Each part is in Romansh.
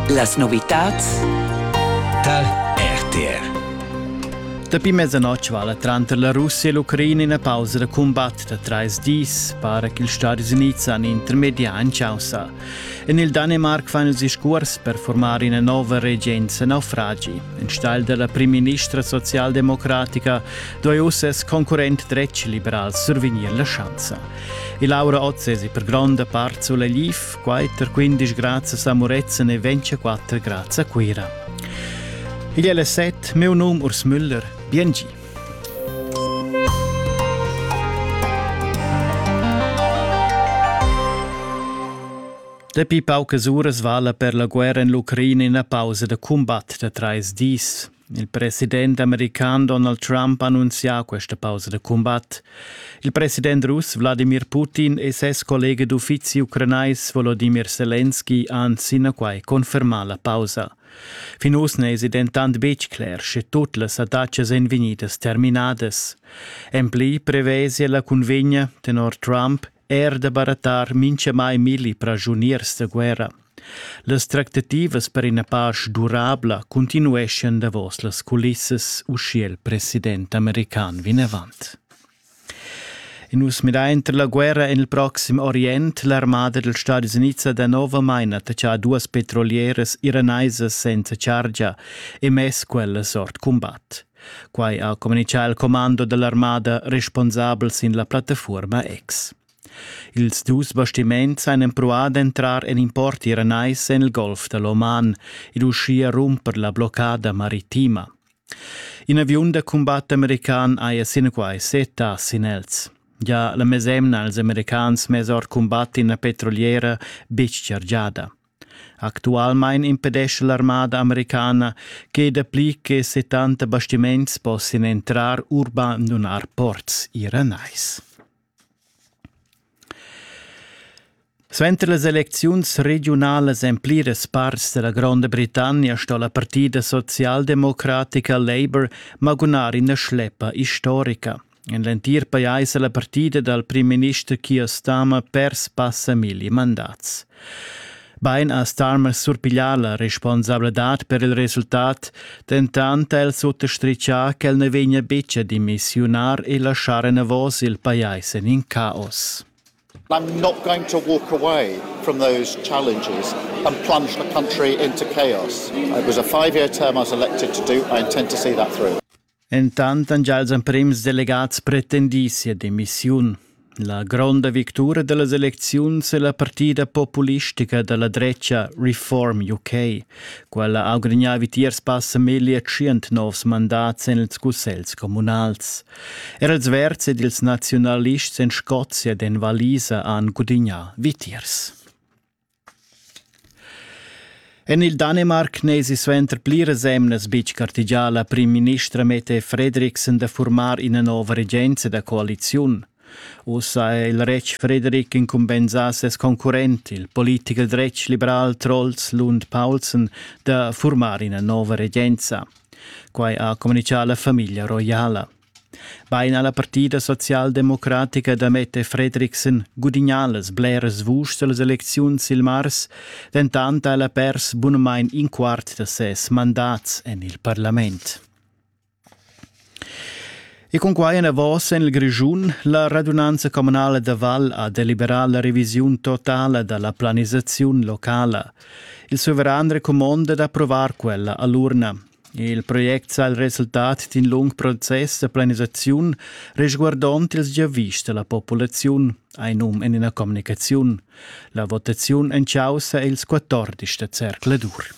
Las novitads tar RTR. Dapi mezzanoc vala tranter la Russia e l'Ucraina ina pausa da cumbat da trais dis, para ch'ils Stadis Unids han intermedià en chaussa. En il Danemarc fan els discurs per formar ina nova regenza naufragi. Enstagl della primministra socialdemocratica doi uss ses concurrent dretg liberal survegnir la schanza. E Laura Oz è per gronda part sulla LIF, Quatter quindisch grazias a Murezzan e ventiquatter grazie a Cuira. Igl è le set, meu num Urs Müller, biengi. Dapi paucas uras vala per la guerra en l'Ucraina ina pausa da cumbat da trais dis. Il president american Donald Trump ha annunzià questa pausa da cumbat. Il president russ Wladimir Putin e ses collega d'uffizi ucranais Volodimir Selenski han sinaquai confermà la pausa. Fin uss n'èsi dentant betg cler, sche tut las attacas èn vegnidas terminadas. En pli prevesia la cunvegna tenor Trump er da barattar minchamai milli pragiuniers da guerra. Las tractativas per ina pasch durabla continueschan davos las culissas usché il president american vinavant. In us midà inter la guerra en il proxim Orient, l'armada dels Stadis Units da novamain attacchà duas petrolieras iraneisas senza chargia e mess quellas ord combat. Quai ha communitgà il commando da l'armada responsabel sin la plattafuorma X. Ils dus bastiments han empruà d'entrar en in porti ranais en il golf da l'Oman ed uschia rumper la bloccada maritima. In aviun da cumbat american haja sinaquai setta sin els. Ja la mesemna als americans mess ord cumbat ina petroliera betg chargiada. Actualmein impedescha l'armada americana che dapli che settanta bastiments possian entrar u bandunar ports iranais. Suenter las elecziuns regiunalas en pliras parts della Gronda Britannia sto la partida socialdemocratica Labour magunar ina schleppa historica. En l'entir pajais è la partida dal primminister Keir Starmer pers passa milli mandats. Bein ha Starmer surpiglià la responsabladad per il resultat, dentant ha el suttostrichà ch'el na vegnia betg a dimissiunar e laschar enavos il pajais en in caos. I'm not going to walk away from those challenges and plunge the country into chaos. It was a five year term I was elected to do. I intend to see that through. Entant han gia ils emprims delegads pretendì sia demissiun. La gronda victura da las elecziuns è la partida populistica da la dretga Reform UK. Quella ha gudagnà vitiers passa meglio tschient novs mandats en ils cussels communals. Er els verds ed ils naziunalists en Scozia ed en Valisa han gudagnà vitiers. En il Danemarc n'èsi suenter pliras emnas betg gartegià la primministra Mette Fredriksen da furmar ina nova regenza da coaliziun. Ussa è il retg Fredrik incumbensà ses concurrent, il politicher dretg liberal Troels Lund Paulsen, da furmar ina nova regenza. Quai ha communitgà la famiglia roiala. Bein ha la partida socialdemocratica da metter Fredriksen gudignà las bleras vuschs dallas elecziuns sil mars, dentant ha ella pers bunamain in quart da ses mandats en il parlament. E cun quai enavos en il Grischun, la radunanza communala da Val ha deliberà la revisiun totala da la planisaziun locala. Il suveran recumonda d'approvar quella a l'urna. Il project sa il resultat d'in lung process da planisaziun resguardond ils giavischs da la populaziun, hai num en ina communicaziun. La votaziun en chaussa ils 14 da zercladur.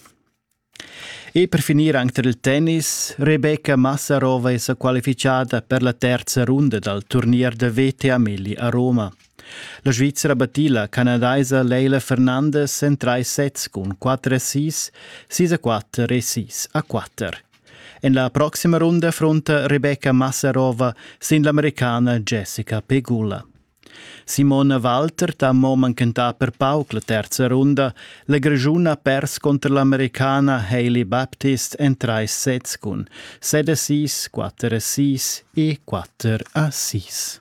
E per finir anche tar il tennis, Rebecca Massarova è sa qualifichada per la terza runda dal turnier da VTA Melli a Roma. La Svizra battì la canadaisa Leila Fernandes en trais sets cun quatter assists, sis a quatter e sis a quatter. En la proxima runda frunta Rebecca Massarova sin l'Americana Jessica Pegula. Simona Walter ha mo manchentà per pauc la terza runda. La Grischuna ha pers contro l'americana Hailey Baptist en trais sets cun set assist, quatter assist e quatter assist.